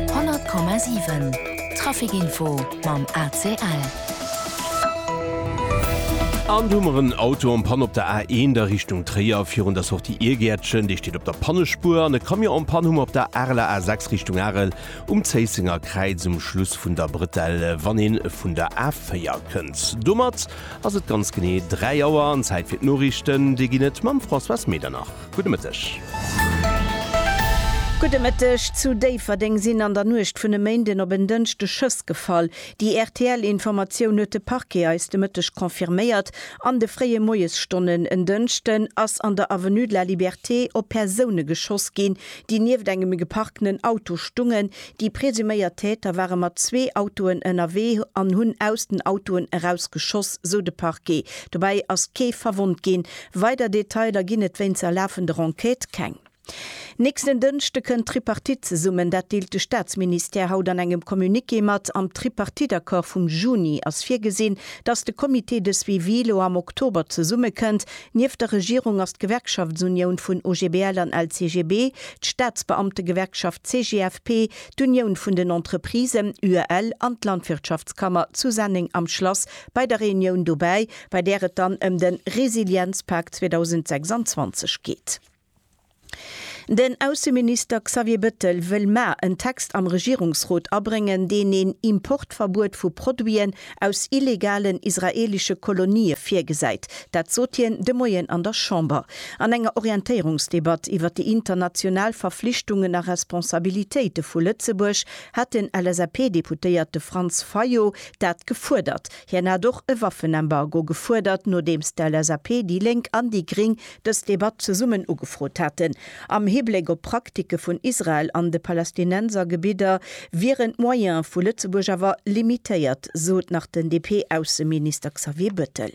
100,7 Trafic Info mam ACL. An do hu mer en Auto en panne op der A1 a Richtung Tréier, virun der Sortie Iergäertchen. Dee steet op der Pannespuer. An e Camion en panne hu mer op der Areler A6 Richtung Arel um Zéissenger Kräiz um Schluss vun der Bretelle, wann ee vun der A4 kënnt. Domat ass et ganz genee 3 Auer an Zäit fir d'Noriichten. Déi ginn et mam Françoise Medernach. Gudde Mëtteg. Gudde Mëtteg. Zu Déifferdeng sinn an der Nuecht vun e Méinden op en Dënschde Schëss gefall. Déi RTL-Informatioun huet de Parquet eis de Mëtteg confirméiert. An de fréie Moiesstonnen en Dënschden ass an der Avenue de la Liberté op Persoune geschoss ginn, déi nieft engem geparkenen Auto stungen. Déi presuméiert Täter ware mat zwee Autoen ënnerwee an hunn aus den Autoen eraus geschoss, sou de Parquet. Dobäi ass kee verwonnt ginn. Weider Detailer ginn et wéinst der lafender Enquête keng. Nächsten Dënschde kënnt d'Tripartite zesummen, dat deelt de Staatsministère haut an engem Communiqué mat. Am Tripartite-Accord vum Juni ass virgesinn, datt de Comité de suivi elo am Oktober zesummekënnt. Nieft der Regierung ass d'Gewerkschaftsunioun vun OGBL an LCGB, d'Staatsbeamtegewerkschaft CGFP, d'Unioun vun den Entreprisen, UEL, an d'Landwirtschaftskammer zu Senneng am Schlass bei der Reunioun dobäi. bei där et dann ëm de Resilienzpak 2026 geet. Den Ausseminister Xavier Bettel wëll mar en Text am Regierungsrot abréngen, deen een Importverbuet vu Produiten aus illegalen israeelesche Kolonië virgesäit. Dat sot hien de Moien an der Chamber an enger Orientéierungsdebatt iwwer déi international Verflichtungen a Responsabilitéite vu Lëtzebuerg, hat den LSAP-Deputéierte Franz Fayot dat gefuerdert. Hien hat och e Waffenembargo gefuerdert, nodeems d'LSAP, déi Lénk an déi Gring dës Debatt zesummen ugefrot haten. Am Hibléck op d'Praktike vun Israel an de Palästinensergebidder wieren d'Moyene vu Lëtzebuerg awer limitéiert, sot nach den DP-Ausseminister Xavier Bettel.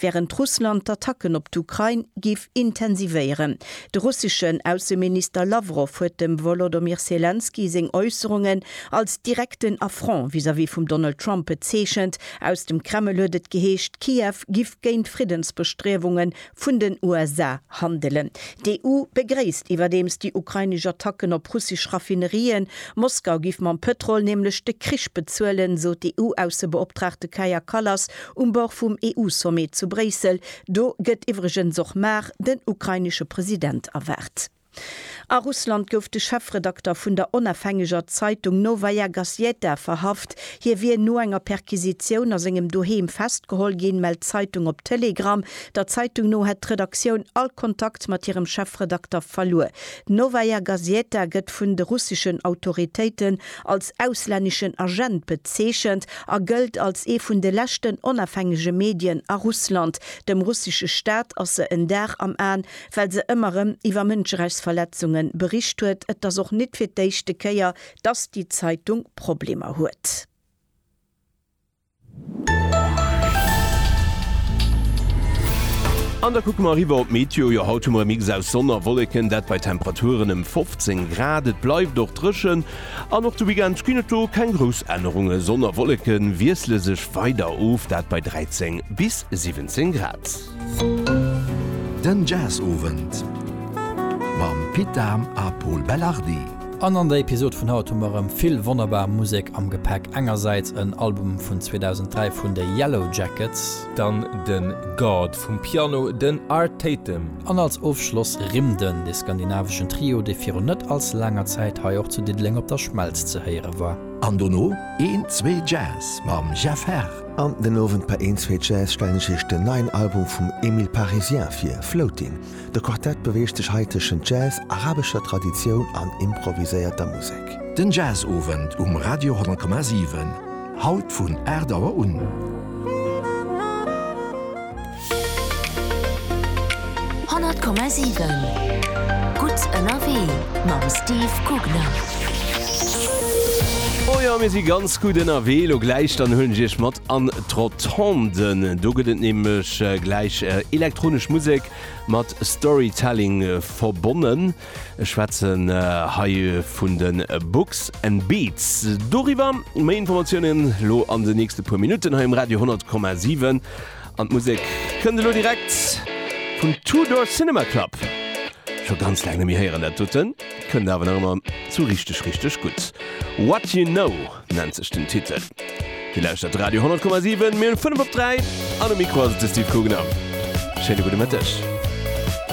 wärend Russland d'Attacken op d'Ukrain géif intensivéieren. De russeschen Ausseminister Lawrow huet dem Wolodomyr Selenskyj seng Äusserungen als direkten Affront vis-à-vis vum Donald Trump bezeechent. Aus dem Kreml huet et geheescht, Kiew giff géint d'Friddensbestriewunge vun den USA handelen. D'EU begréisst iwwerdeems déi ukrainesch Attacken op russesch Raffinerien. Moskau giff mam Pëtrol nämlech de Krich bezuelen, sot d'EU-Aussebeoptraagte Kaja Kallas Um Bord vum EU-Sommet zu Bréissel, do gëtt iwwregens och mar den ukrainesche President erwaart. A Russland gouf de Chefredakter vun der onafhängeger Zeitung Nowaja Gazjeta verhaft. Hie wier no enger Perquisitioun a sengem Doheem festgeholl ginn, mellt d'Zeitung op Telegram. Der Zeitung no hätt d'Redaktioun all Kontakt mat hirem Chefredakter verluer. D'Nowaja Gazjeta gëtt vun de russeschen Autoritéiten als auslänneschen Agent bezeechent a gëllt als ee vun de leschten onafhängege Medien a Russland. Dem russesche Staat ass se en Dar am Aen, well se ëmmer rëm iwwer Mënscherechtsverletzunge bericht huet. Et ass och net fir d'éischte Kéier, datt déi Zeitung Problemer huet. An da kucke mer eriwwer op d'Meteo. Jo, haut hu mer e Mix aus Sonn a Wolleken, dat bei Temperaturen ëm 15 Grad. Et bleift och dréchen an och de Weekend ginn et do keng grouss Ännerungen. Sonn a Wolleke wiessle sech weider of, dat bei 13 bis 17 Grad. Den Jazzowend mam Pit Dahm a Pol Belardi. An an der Episod vun haut hu mer erëm vill wonnerbar Musek am Gepäck. Engersäits en Album vun 2003 vun de Yellowjackets. Dann de God vum Piano, den Art Tatum. An als Ofschloss Rimden, de skandinaveschen Trio, dee virun net all ze laanger Zäit hei och zu Diddeleng op der Schmelz ze héiere war. An dono een, zwee Jazz mam Jeff Herr. An den Owend bei Een, Zwee, Jazz stellen ech Iech den neien Album vum Emile Parisien vir, Floating. De Quartett beweegt sech hei tëschent Jazz, arabescher Traditioun an improviséierter Musek. Den Jazzowend um Radio 10,7, haut vun 8 Auer un. 100,7 Gutt ënnerwee mam Steve Kugler. Oh jo, mir si ganz gutt ënnerwee elo gläich. Dann huelen ech Iech mat an d'Rotonde. Do gëtt et nämlech gläich elektronesch Musek mat Storytelling verbonnen. Ech schwätzen hei vun de Books and Beats. Doriwwer méi Informatiounen elo an den nächste puer Minutten hei um Radio 100,7. An d'Musek kënnt elo direkt vun Two Door Cinema Club. Scho ganz laang net méi héieren dat doten, kënnt awer nach ëmmer sou richteg richteg gutt. What You Know nennt sech den Titel. Dir lauschtert Radio 10,7, mir hunn 5 op 3 an um Mikro ass et de Steve Gugner. Schéine gudde Mëtteg.